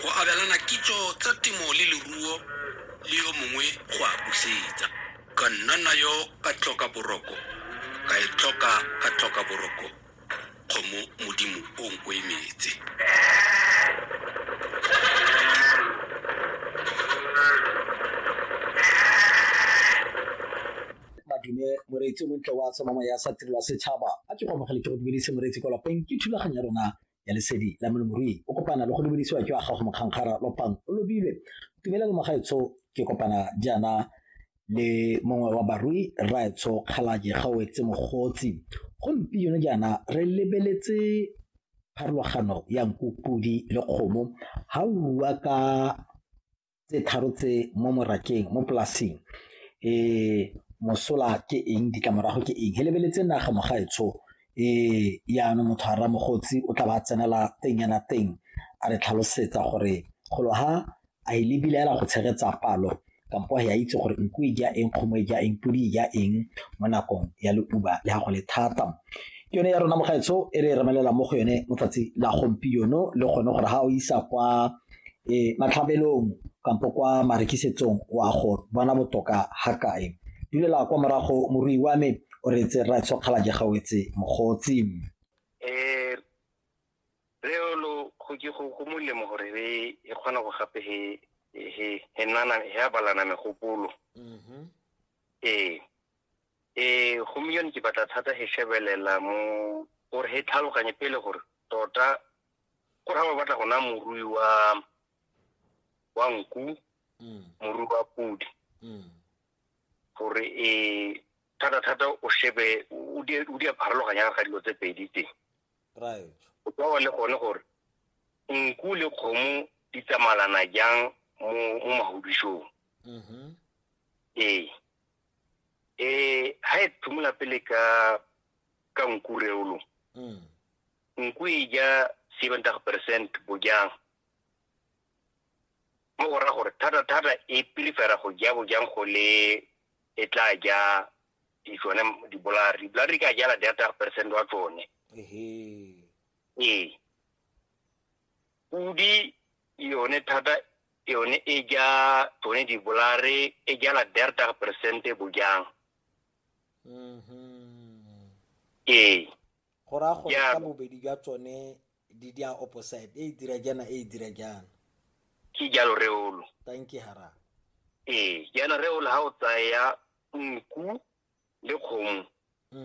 go abelana kitso tsa temo le leruo le yo mongwe go a busetsa ka nna nayo ka tlhoka boroko ka e tlhoka ka tlhoka boroko kgomo modimo o nko e metse madume moreetsi o montle wa tsomamo ya sa tirelwa setšhaba a ke go amogele ke go dumedise moreetsi kwa lapeng ke thulaganyo ya rona ya lesedi la molemirui o kopana le go lebelisiwa ke wa gago mokgankgara lopang o lobile tumela le mogaetsho ke kopana jaana le mongwe wa barui rraetsho kgalake ga o etse mogotsi gompieno jaana re lebeletse pharologano ya nku podi le kgomo ga o rua ka tse tharo tse mo morakeng mo polasing um mosola ke eng ditlamorago ke eng he lebeletse naga mogaetsho um yaanong motho a ramogotsi o tla ba tsenela teng yana teng a re tlhalosetsa gore golo ha a e lebile ela go tshegetsa palo kampo ya itse gore nku e ja eng kgomo e ja eng podi e ja eng mo nakong ya leuba le ga go le thata ke yone ya rona mogaetsho e re e remelela mo go yone motsatsi la gompieno le gone gore ga o isa kwa e matlhabelong kampo kwa marekisetsong wa go bona botoka ga kae dulela kwa morago morui wa me o re tse ra tshokgala je gawetse mogotsi eh re lo go ke go go molemo gore re e kgona go gape he he he nana he abalana megopolo mhm eh eh go miyone ke batla thata he shebelela mo gore he tlhaloganye pele gore tota go raya ba batla go naya morui wa wa nku mm. morui wa podi mm. gore e thata-thata o shebe o di a pharologanya ga dilo tse pedi teng o tsawa le gone gore nku le kgomo di tsamalana jang mo magodisong mm-hmm. ee um ga e thumola pele ka ka nku reolo mm. N kwi ja 70% bojang. Mo go ra gore thata-thata e pilifera go ja bojang go le e tla ja di tsone dibolare. Dibolare di ka jala 30% wa tsone. Ee. Pudi yone thata yone e ja tsone dibolare e jala 30% bojang. Ee. go raya gore ka bobedi jwa tsone di di a opposite e e dira jaana e e dira jaana ke jalo reolo thank you hara ee jaana reolo ga o tsaya nku le kgomo